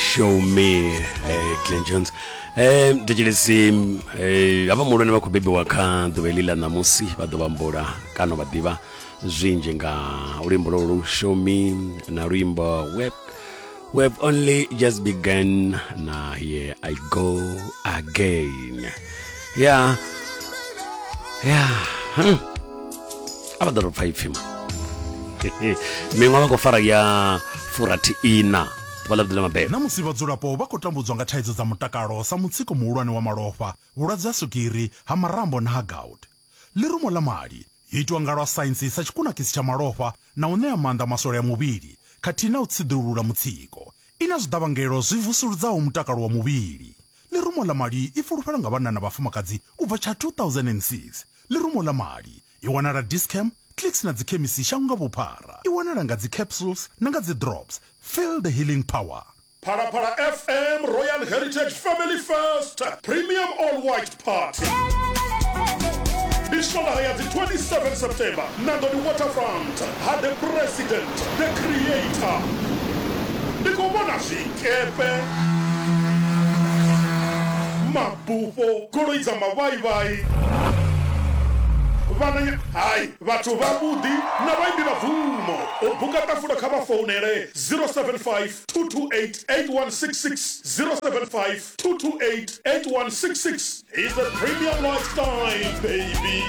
show me eh, glen jones eh, thetshelesi eh, havha muhulwane vha khou bebiwa kha ḓuvha heḽi ḽa ṋamusi vha ḓo vhambula kana vha ḓivha zwinzhi nga luimbo lolu show me na luimbo web web only just began na here i go again ya ya hmm. a vha ḓo tou pfa ipfhi miṅwe vha khou fara ya furathi ina ḓuvha ḽavhuḓi ḽa mabebo. Na musi vhadzulapo vha khou tambudzwa nga thaidzo dza mutakalo sa mutsiko muhulwane wa malofha, vhulwadze ha swigiri, ha marambo na ha gout, ḽirumo ḽa mali yo itwa nga lwa saintsi sa tshikunakisi tsha malofha na u ṋea maanḓa maswole a muvhili khathihi na u tsiḓulula mutsiko. I na zwiḓavhangelo zwi vusuludzaho mutakalo wa muvhili. Ḽirumo ḽa mali i fulufhelwa nga vhanna na vhafumakadzi u bva tsha 2006. Ḽirumo ḽa mali I wanala Dis-Chem, Clicks na dzikhemisi shango nga vhuphara. I wanala nga dzicapsules na nga dzidrops. Feel the healing power. Phalaphala FM Royal Heritage Family First Premium All White Party. Ndi swondaha ya dzi 27 September Nandoni Waterfront ha The President The Creator. Ndi khou vhona zwikepe, ma. Bufho, goloi dza mavhaivhai, vhananya, hai, vhathu vhavhuḓi na vhaimbi vha bvumo. U buka ṱafula kha vha founele 0752288166, 0752288166. He's a premium lifestyle baby.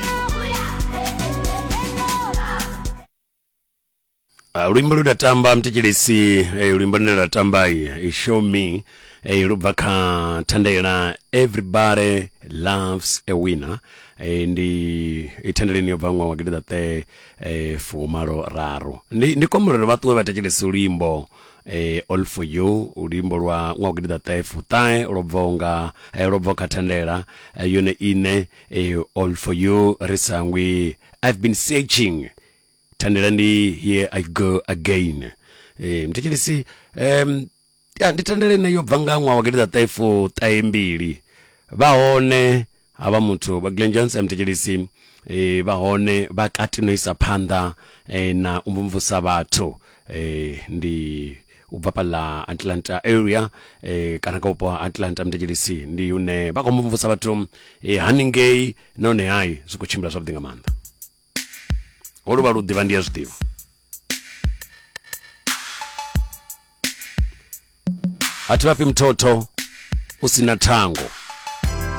Ah, luimbo lu tamba mthetshelesi eh, luimbo lune lwa tamba eh, show me eh, lu bva kha thandela everybody loves a winner eh, ndi i thandeleni yo bva ṅwaha wa gidiḓaṱe eh, fumalo raru ndi, ndi kombelelo vha ṱuwe vha thetshelesi luimbo eh, all for you luimbo lwa ṅwaha wa gidiḓaṱe fuṱahe lwo bvaho nga eh, lwo bvaho kha thandela eh, yone ine eh, all for you ri sangwi i've been searching thandela ndi here i go again eh, mthetshelesi um, ya ndi thandela ine yo bva nga ṅwaha wa gidida ṱaefo ṱahe mbili vha hone havha muthu vha glen johnson mthetshelesi eh, vha hone vha kati no isa phanḓa eh, na u mvumvusa vhathu eh, ndi u bva pala atlanta area eh, kana ka vhupo ha atlanta mthetshelesi ndi hune vha khou mvumvusa vhathu eh, haningei nahone hai zwi khou tshimbila zwavhuḓi nga maanḓa ho luvha lu ḓivha ndi a zwiḓivha a thi vhafhi muthotho u si na thango